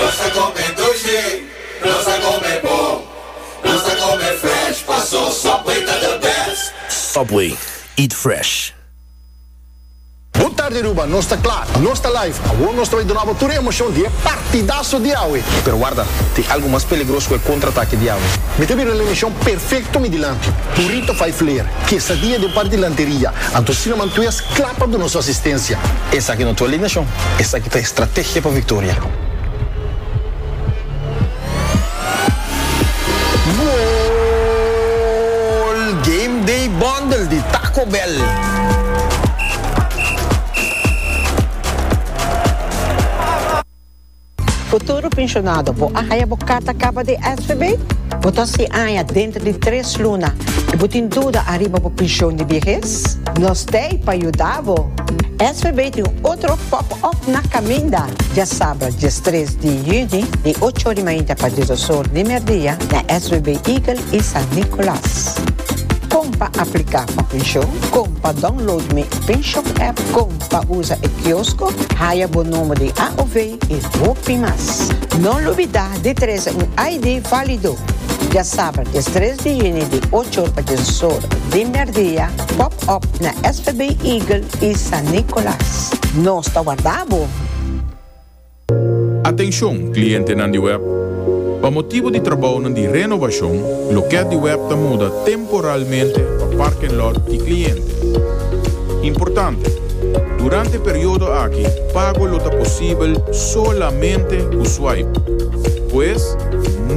Nos a come dulce, nos a come bon, nos a come fresh, paso Subway ta the best. Subway, eat fresh. Bo tarde Aruba, nos ta kla, nos ta live. Awor nos ta bai duna bo tur e emocion di e partidaso di awe. Pero warda, tin algo mas peligros ku e contraatake di awe. Mi ta bira un eleccion perfecto mi dilanti. Burrito vijf leer, quesadilla di un par di lanteria, anto sinaman tues, Kla pa duna su asistensia. Esaki no ta alineashon, esaki ta estrategia pa viktoria. Goal! Game Day Bundle di Taco Bell. Futuro Pensionado, Bo a haya bo carta caba di SVB? Bo ta sin aña dentro di tres luna y bo tin duda ariba bo pension di biehes? Nos t'ey pa yuda bo! SVB tin otro pop-up na caminda! Diasabra diestres di juni di ocho ori mainta pa dies osor di merdia na SVB Eagle y San Nicolas. Con pa aplica pa pension, con pa download mi Pensionapp, con. pa usa e kiosko, haya bo nomber di AOV i hopi mas. No lubidá di trese un ID válido. Diasaber des tres di yuni di ocho or pa dies or di mèrdia, pòp-òp na svb Eagle i San Nicolas. Nos ta warda bo! Atenshon, klientenan di web! Pa motibu di trabounan di renovashon, lokèt di web ta muda temporalmente pa parken lòt di kliente. Importante, Durante periodo aki, pago lo ta posibel solamente ku swipe. Pues,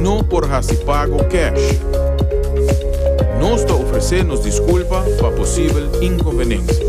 no por hasi pago kèsh. Nos ta ofresé nos diskulpa pa posibel inkonvenensia.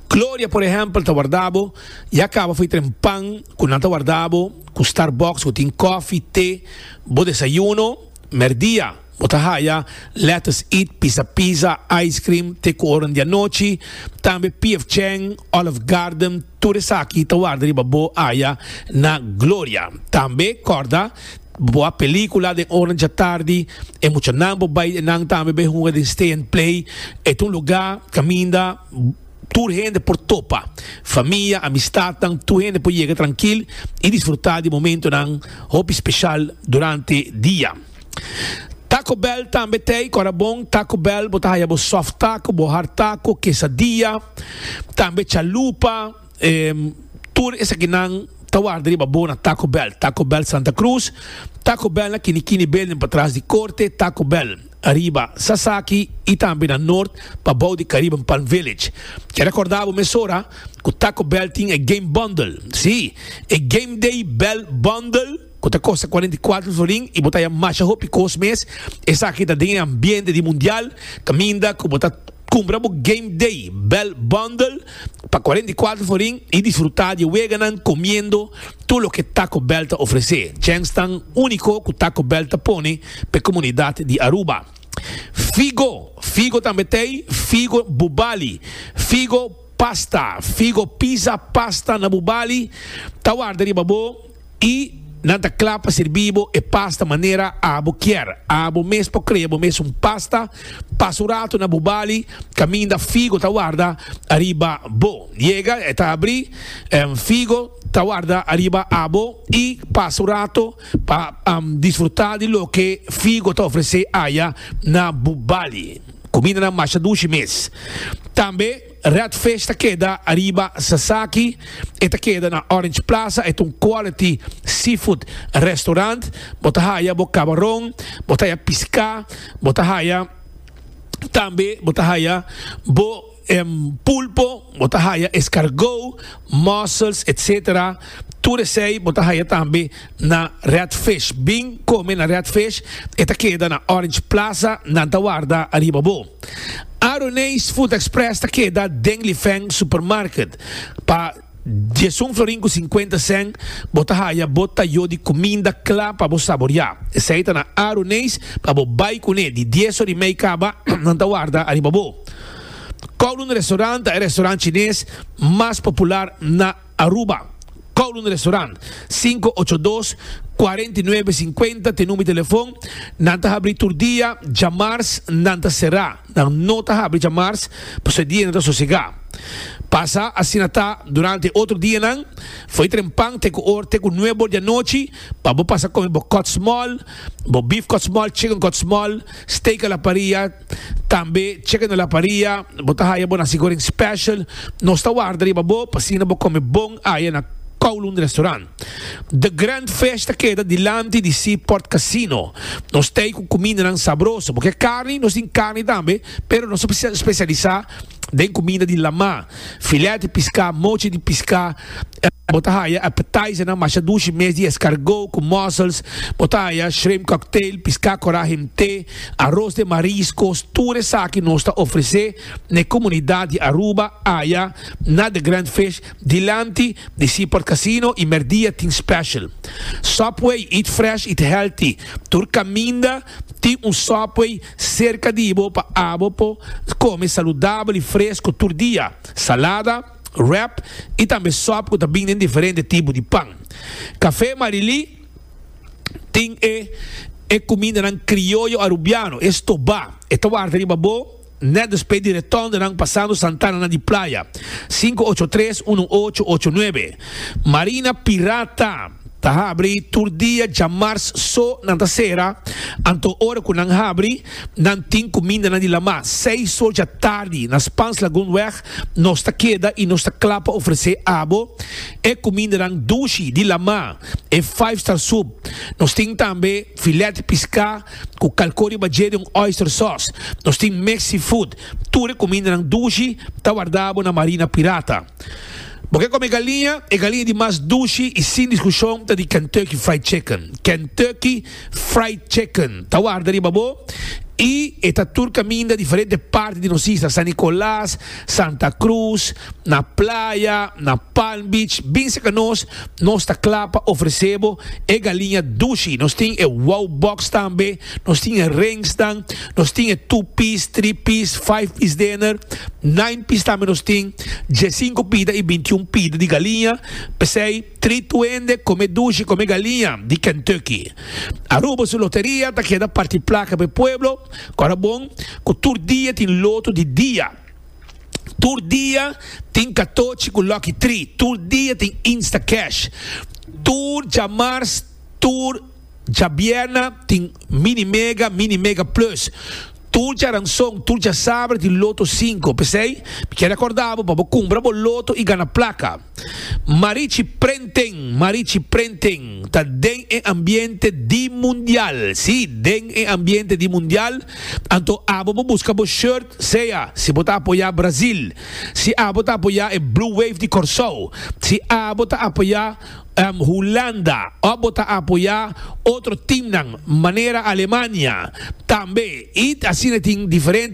Gloria, por ehempel, ta warda bo i a kaba fai tren pan ku nan ta warda bo ku Starbucks ku tin kòfi, te. Bo desayuno, mèrdia, bo ta haya lèters eat, pisa pizza, ice cream, te ku oren di anochi. Tambe PF Chang, Olive Garden, tur esaki ta warda riba bo aya na Gloria. Tambe kòrda, bo a pelíkula den oren djatardi, e muchanan bo bai den nan tambe bai hunga den Stay and Play. E ta un lugá kaminda. Tur hende por topa, famia, amistadnan, tur hende por yega trankil i disfrutá di momentonan hopi speshal durante dia. Taco Bell tambe ta ei, ku ora bon Taco Bell bo ta haya bo soft taco, bo hard taco, quesadilla, tambe chalupa. Tur esakinan ta warda riba bo na Taco Bell, Taco Bell Santa Cruz, Taco Bell na Kini Kini Building patras di Korte, Taco Bell riba Sasaki i tambe na Nort pa bou di Caribbean Palm Village. Ke rekorda bo mesora ku Taco Bell tin e Game Bundle. Sí, e Game Day Bell Bundle. cu ta costa cuarenta y cuatro florin y bo ta haya masha hopi cos mes, esaki ta den e ambiente di Mundial, caminda cu bo ta cumpra bo Game Day Bell Bundle pa cuarenta y cuatro florin y disfruta di e weganan comiendo tur loke Taco Bell ta ofrece, djenks tan unico cu Taco Bell ta pone pa e comunidad di Aruba. Figo, figo tambe ta ey, figo bubali, figo pasta, figo pizza pasta na bubali ta warda riba bo. I nan ta kla pa sirbi bo e pasta manera abo kier. Abo mes por krea bo mes un pasta. Pasa un ratu na bo bali kaminda figo ta warda ariba bo. Yega e ta abri, em, figo ta warda ariba abo i pasa un ratu pa, em, disfruta di loke figo ta ofrese aya na bo bali. Kumindanan masha dushi mes tambe. Red Fish ta keda ariba Sasaki, e ta keda na Orange Plaza, e ta un quality seafood restaurant, bo ta haya bo cabaron, bo ta haya pisca, bo ta haya tambe bo ta haya bo em pulpo, bo ta haya escargot, mussels etc. Tur esey bo ta haya tambe na Redfish. Bin kome na Redfish, e ta keda na Orange Plaza, nan ta warda ariba bo. Aroneis Food Express ta keda den Lifeng Supermarket. Pa diesun florin ku sinkuenta sèn bo ta haya bo tayo di kuminda kla pa bo saboriá. Esei ta na Aroneis pa bo bai kuné di dies or i mei kaba, nan ta warda ariba bo. Kowloon Restaurant ta e restaurant chines mas popular na. Aruba, Kowloon Restaurant, sinku ocho dos, kuarenta i nuebe, sinkuenta t'e number di telefon, Nan ta habri tur dia, djamars nan ta será, nan no ta habri djamars pasobra e dia nan ta sosegá. Pasa asina ta durante e otro dianan, fo'i trempan t'e ku or t'e ku nuebe or di anochi pa bo pasa kome bo kòtsmòl, bo beef kòtsmòl, chicken kòtsmòl, steak a la parrilla, Tambe cheque na la paria, bo ta haya bo naci goreng special, nos ta warda riba bo p'asina bo come bon aya na Kowloon Restaurant. The Grand Fish ta keda dilanti di Seaport Casino. Nos t'ey cu cumindanan sabroso, bo ke carni, nos tin carni tambe, pero nos ta specialisa. den comida di lama, filet di pisca, mochi di pisca, bo ta haya appetizernan masha dushi mes di escargot cu mussels, bo ta haya shrimp cocktail, pisca cora himte, aros den mariscos, tur esaki nos ta ofrece n'e comunidad di Aruba aya na The Grand Fish dilanti di Seaport Casino y merdia tin special Subway, eat fresh, eat healthy, tur caminda tin un Subway. Serka di bo pa abo por kome saludabel i fresku tur dia, salada, wrap i tambe sòp ku ta bin den diferente tipo di pan. Kafé Marilí tin e e kumindanan krioyo arubiano, e stobá. E ta warta riba bo nèt despues di retòndonan pasando santananan di playa. Sinku ocho tres uno ocho ocho nuebe Marina Pirata. Ta habri tur dia djamars so nan ta sera, anto ora cu nan habri nan tin cu mindanan di lama. Seis or dja tardi na Spans Lagoon weg nos ta keda y nos ta cla pa ofrece abo e cumindanan dushi di lama, e five star soup. Nos tin tambe filet pisca cu calco riba dje den un oyster sauce. Nos tin mexi food. Tur e cumindanan dushi ta wardabo na Marina Pirata. Bo ke kome galiña? E galiña di mas dushi i sin diskushon ta di Kentucky Fried Chicken. Kentucky Fried Chicken ta warda riba bo i e ta tur kaminda diferente parti di nos isla, San Nicolas, Santa Cruz, na playa, na Palm Beach, bin serka nos. Nos ta kla pa ofrese bo e galiña dushi. Nos tin e Wow Box tambe. Nos tin e rengsnan, nos tin e two piece, three piece, five piece dener, nine piece tambe nos tin, diesinco pida y bintiun pida di galiña, p'esey three tuende come dushi come galiña di Kentucky. Aruba su loteria ta keda parti placa p'e pueblo, cu ora bon cu tur dia tin loto di dia, tur dia tin catochi cu lucky three, tur dia tin instacash, tur djamars, tur. Djabièrna tin Mini Mega, Mini Mega Plus, tur djaranson, tur djasaber di Loto Sinku. P'esei, mi kier rekòrda bo pa bo kumpra bo loto i gana plaka. Marichi Prenting, Marichi Prenting, ta den e ambiente di Mundial, sí, den e ambiente di Mundial. Anto abo bo buska bo shirt, sea si bo ta apoyá Brazil, si abo ta apoyá e Blue Wave di Kòrsou, si abo ta apoyá. Hulanda, ò bo ta apoyá otro timnan manera Alemania tambe i asina tin diferente.